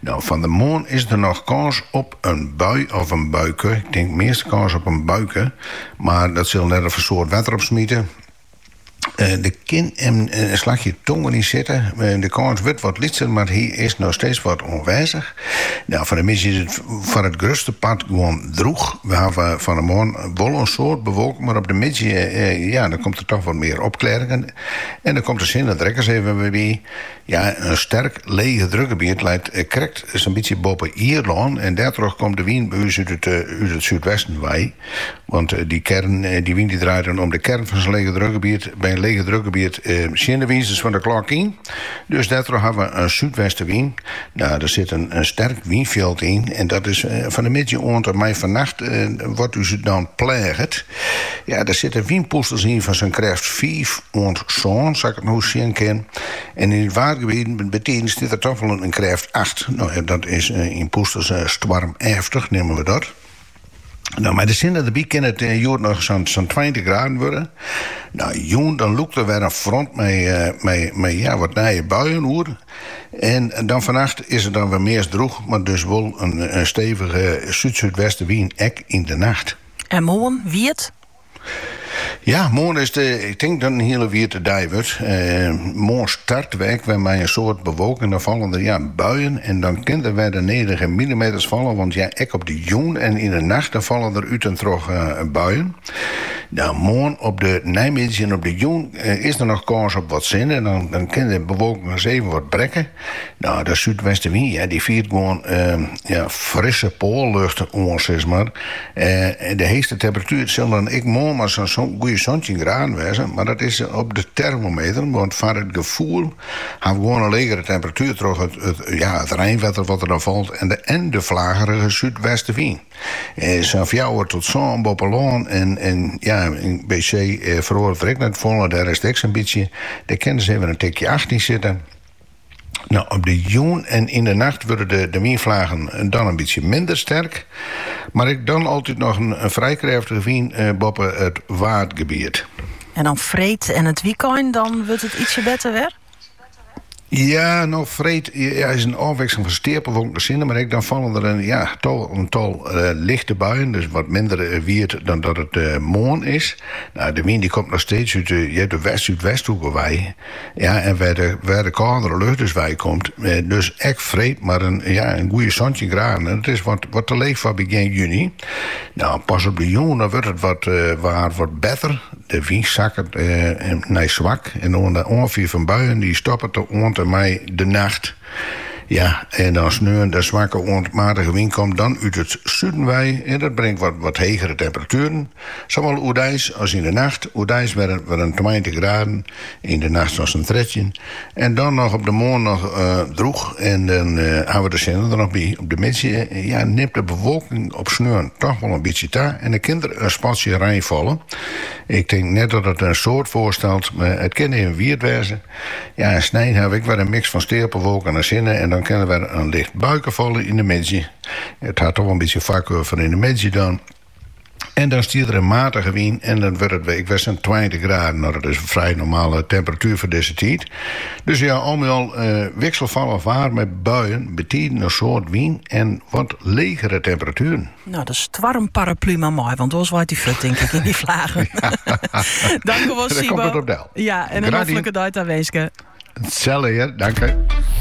No, fan de moarn is der noch kâns op in bui of in buike. Ik tink meast kâns op in buike, mar dat sil net of in soad wetter opsmite. Eh, der kin in slachje tonger yn sitte. Eh, de kâns wurdt wat lytser, mar hy is noch steeds wat oanwêzich. No, fan de middei is it foar it grutste part gewoan droech. We hawwe fan de moarn wol in soad bewolking, mar op de middei, eh, ja, dan komt der toch wat mear opklearingen. En dan komt de sinne der ek ris even wer by. Ja, in sterk legedrukgebiet leit krekt sa'n bytsje boppe Ierlân en dêrtroch komt de wyn by ús út it súdwesten wei. Want dy kern, dy wyn dy draait dan om de kern fan sa'n legedrukgebiet. By in legedrukgebiet tsjin de wizers fan de klok yn, dus dêrtroch hawwe we in súdwestewyn. Nou, der sit in sterk wynfjild yn en dat is fan 'e middei oant en mei fannacht wat ús dan pleaget. Ja, der sitte wynpûsters yn fan sa'n krêft fiif oant sân, sa't ik it no sjen kin. En yn it waadgebiet bytiden stiet der dochs wol in krêft acht. No ja, dat is yn pûsters stoarmeftich, neame we dat. No, mei de sinne derby kin it hjoed noch sa'n tweintich graden wurde. No, jûn dan lûkt der wer in front mei ja, wat nije buien oer. En dan fannacht is it dan wer meast droech, mar dus wol in stevige súdsúdwestewyn ek yn de nacht. En moarn, Wiert? Ja, moarn is de, ik tink dat it in hiele wiete dei wurdt. Moarn start we ek wer mei in soad bewolking. Dan falle der ja, buien en dan kin der wer de nedige millimeters falle. Want ja, ek op de jûn en yn de nacht dan falle der út en troch buien. Nou, moarn op de neimiddei en op de jûn is der noch kâns op wat sinne, dan kin de bewolking ris even wat brekke. No, de súdwestewyn ja, dy fiert gewoan ja, frisse poallucht oan, sis mar. Eh, de heechste temperatuer sil dan ek moarn mar sa'n goede santjin graden wêze, mar dat is op de termometer, want foar it gefoel ha we gewoan in legere temperatuer troch it ja, it reinwetter wat der dan falt en de en de flagerige súdwestewyn. Eh, sa'n fjouwer tot sân boppe lân en en ja, by see feroaret der ek net folle, dêr is it ek sa'n bytsje, dêr kin ris even in tikje acht yn sitte. Nou, op de jûn en yn de nacht wurde de, de wynflagen dan in bytsje minder sterk, mar ek dan altyd noch in, in frij krêftige wyn eh, boppe it Waadgebiet. En dan freed en it wykein, dan wurdt it ietsje better wer? Ja, no freed ja, is in ôfwikseling fan steapelwolken en sinne, mar ek dan falle der in, ja, tal, in tal eh, lichte buien, dus wat minder eh, wiet dan dat it eh, eh, moarn is. Nou, de wyn dy komt noch steeds út de, ja, de west-súdwesthoek wei. Ja, en wêr't de kâldere lucht dus wei komt, dus ek freed mar in goede santjin graden. En dat is wat te leech foar begjin juny. No, pas op de jûn dan wurdt it waar wat better. De wyn sakket nei swak en de oanfier fan buien dy stoppet dan yn 'e rin mei de nacht. Ja, en as sneon de swakke oant matige wyn komt dan út it suden wei en dat bringt wat hegere temperatueren. Sawol oerdeis as yn de nacht. Oerdeis wer in tweintich graden, yn de nacht ris in trettjin. En dan noch op de moarn noch drûch en dan hawwe we de sinne der noch by. Op de middei ja, nimt de bewolking op sneon toch wol in bytsje ta en dan kin der in spatsje rein falle. Ik tink net dat it in soad foarstelt, mar it kin even wiet wêze. Ja, en snein hawwe we ek wer in miks fan steapelwolken en sinne en dan kin der wer in licht buike falle yn de middei. It hat toch wol in bytsje foarkuor foar yn de middei dan. En dan stiet der in matige wyn en dan wurdt it ek wer sa'n tweintich graden. No, dat is in frij normale temperatuer foar dizze tiid. Dus ja, al mei al wikselfallich waar mei buien, betiden in soad wyn en wat legere temperatueren. Nou, de stoarmparaplu mar mei, want oars waait dy furt tink ik yn dy flagen. Dank wel, Siebo. Ja, en een hoffelijke dag daar wenske. Hetzelfde, dank je.